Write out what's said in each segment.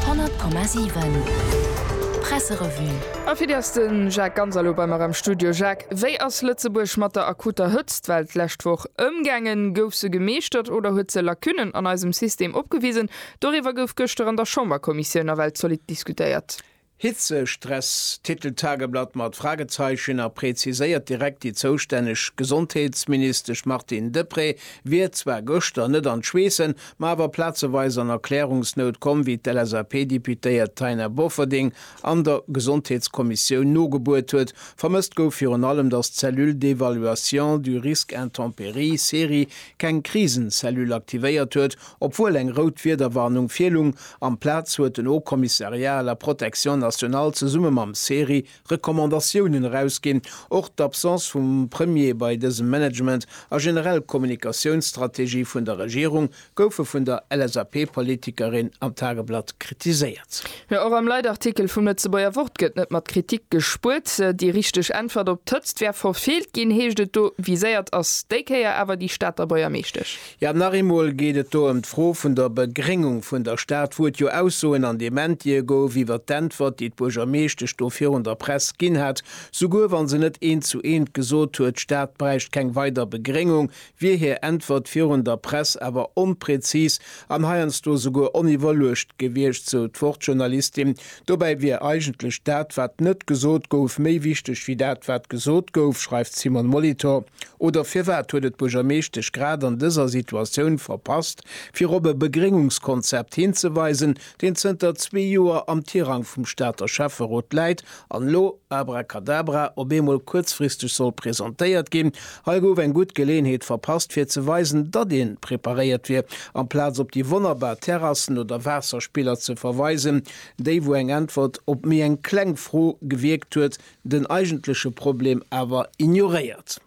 100,7 Presserevue. A fir déi ass de Jacques Ganser elo bei mer am Studio. Jacques, wéi ass Lëtzebuerg mat der akuter Hëtzt, well d'lescht Woch ëmgaangen? Gouf se gemeeschtert oder huet se Lacunnen an eisem System opgewisen? Doriwwer gouf gëschter an der Chamberkommissioun nawell zolidd diskutéiert. Hitzestress, Titeltageblatt mat Fragezeichen a präziséiert direkt, Déi zoustänneg Gesondheetsministesch Martine Deprez wier zwar gëschter net an d'Schweessen, ma awer plazeweis an Erklärungsnout komm, wéi d'LSAP-Deputéiert Taina Bofferding an der Gesondheetskommissioun nogebuert huet. Vermësst gouf virun allem, datt d'Cellule d'évaluation du risque intempéries, CERI, keng Krisenzellule aktivéiert huet, Obwuel eng rout Wiederwarnung virlung, amplaz huet den Haut Commissariat à la protection nationale zesumme mam CERI Recommandatiounen erausginn. Och d'Absence vum Premier bei dësem Management a generell Kommunikatiounsstrategie vun der Regierung goufe vun der LSAP-Politikerin am Tageblatt kritiséiert. Jo, och am Leitartikel vum Lëtzebuerger Wort gëtt net mat Kritik gespuert. Déi richteg Äntwert op d'Hëtzt wär verfeelt ginn, heescht et do. Viséiert ass déi Kéier awer déi Stater Buergermeeschtesch. Jo, nach eemol geet et do ëm d'Fro vun der Begréngung vun der Stad, wou et jo Aussoen an Dementie gouf iwwert d'Äntwert, déi d'Buergermeeschtesch do virun der Press ginn hat, souguer wa se net eent zu eent gesot huet, d'Stad bräicht keng weider Begréngung, wier hir Äntwert virun der Press awer onprezis an heiansdo souguer oniwwerluecht gewiescht, sou d'Wort-Journalistin Dobäi wier eigentlech dat, wat net gesot gouf, méi wichteg wéi dat, wat gesot gouf, schreift d'Simone Molitor. Oder firwat huet et d'Buergermeeschtesch grad an dëser Situatioun verpasst, fir op e Begréngungskonzept hinzeweisen, deen zënter zwee Joer am Tirang vum Stater Schäfferot läit an elo, abracadabra, op eemol kuerzfristeg soll presentéiert ginn? Hei gouf eng gutt Geleenheet verpasst fir ze weisen, datt een preparéiert wier. Amplaz op déi wonnerbar Terrassen oder Waasserspiller ze verweisen, déi wou eng Äntwert op méi eng kleng Fro gewierkt huet, den eigentleche Problem awer ignoréiert.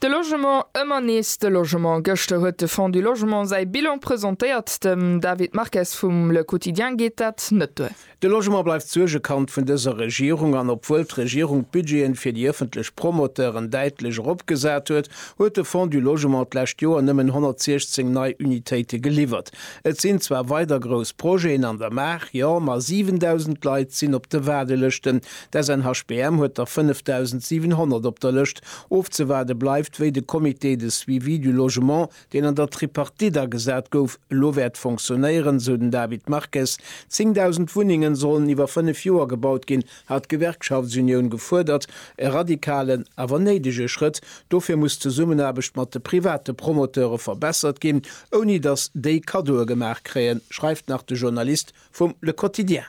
De Logement, ëmmer nees de Logement. Gëschter huet de Fonds du Logement säi Bilan presentéiert. Dem David Marques vum Le Quotidien geet dat net duer. De Logement bleift d'Suergekand vun dëser Regierung an obwuel d'Regierung d'Budgeten fir déi ëffentlech Promoteuren däitlech eropgesat huet, huet de Fonds du Logement d'lescht Joer nëmmen 116 nei Unitéite geliwwert. Et sinn zwar weider grouss Projeten an der Maach, jo, ma 7.000 Leit sinn op de Waardelëschten. D'SNHBM huet der 5.700 op der Lëscht. Ofzewaarde bleift, wéi de Comité de suivi du logement, deen an der Tripartite agesat gouf, elo wäert fonctionnéieren, esou den David Marques. 10.000 Wunnenge sollen iwwer fënnef Joer gebaut ginn, hat d'Gewerkschaftsunioun gefuerdert. E radikalen, awer néidege Schrëtt. Dofir muss d'Zesummenaarbecht mat de private Promoteure verbessert ginn, ouni datt déi Kaddoe gemaach kréien, schreift nach de Journalist vum Le Quotidien.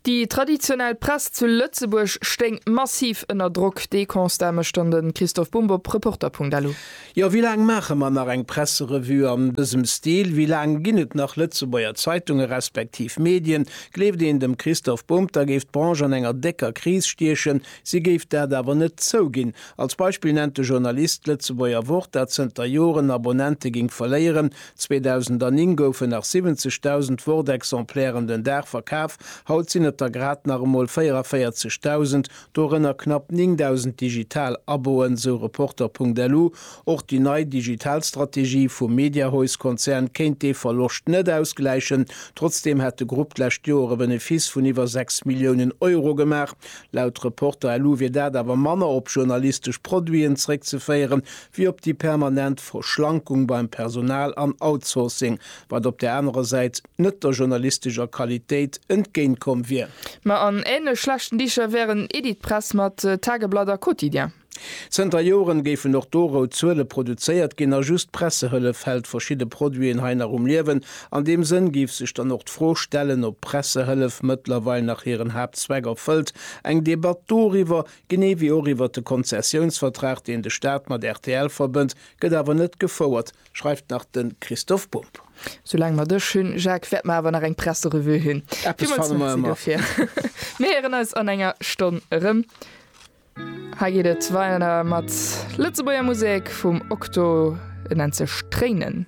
Déi traditionell Press zu Lëtzebuerg stéing massiv ënner Drock. Dee Constat mécht dann de Christoph Bumb op Reporter.lu. Jo, wéi laang maache mer nach eng Presserevue an dësem Stil? Wéi laang ginn et nach Lëtzebuerger Zeitunge respektiv Medien? Gleeft een dem Christoph Bumb, da géif d'Branche an enger décker Kris stiechen. Si géif dat awer net zouginn. Als Beispill nennt de Journalist d'Lëtzebuerger Wort, dat zënter Joren Abonnente géing verléieren, 2009 goufen nach 70.000 Word-Exemplairen den Dag verkaf, haut sinn et der grad nach emol 44.000, dorënner knapp 9.000 digital Aboen, sou Reporter.lu. Och déi nei digital Strategie vum Mediahaus-Konzern kéint dee Verloscht net ausgläichen. Trotzdeem hätt de Grupp d'lescht Joer e Benefiss vun iwwer 6 Milliounen Euro gemaach. Laut Reporter.lu wier dat awer manner op journalistesch Produiten zeréckzeféieren, wéi op déi permanent Verschlankung beim Personal an Outsourcing, wat op där anerer Säit net der journalistescher Qualitéit entgéintkomm wier. Ma an änlech schlechten Dicher wären Editpress mat Tageblatt a Quotidien. Zënter Joren géifen och do rout Zuele produzéiert ginn a just d'Pressehëllef hält verschidde Produiten hei nach um Liewen. An deem Sënn géif sech dann och d'Fro stellen, ob d'Pressehëllef mëttlerweil nach hiren Haaptzweck erfëllt, eng Debatt doriwwer, Genee wéi och iwwert de Konzessiounsvertrag, deen de Staat mat rtl verbënnt, gëtt awer net gefouert, schreift nach de Christoph Bump. Soulaang mer dech hunn, Jacques, wäerte mer awer nach eng Presserevue hunn. Eppes fanne mer ëmmer. Mir héieren eis an enger Stonn erëm. Hei geet et weider mat Lëtzebuerger Musek vum Okto, et nennt sech Tréinen.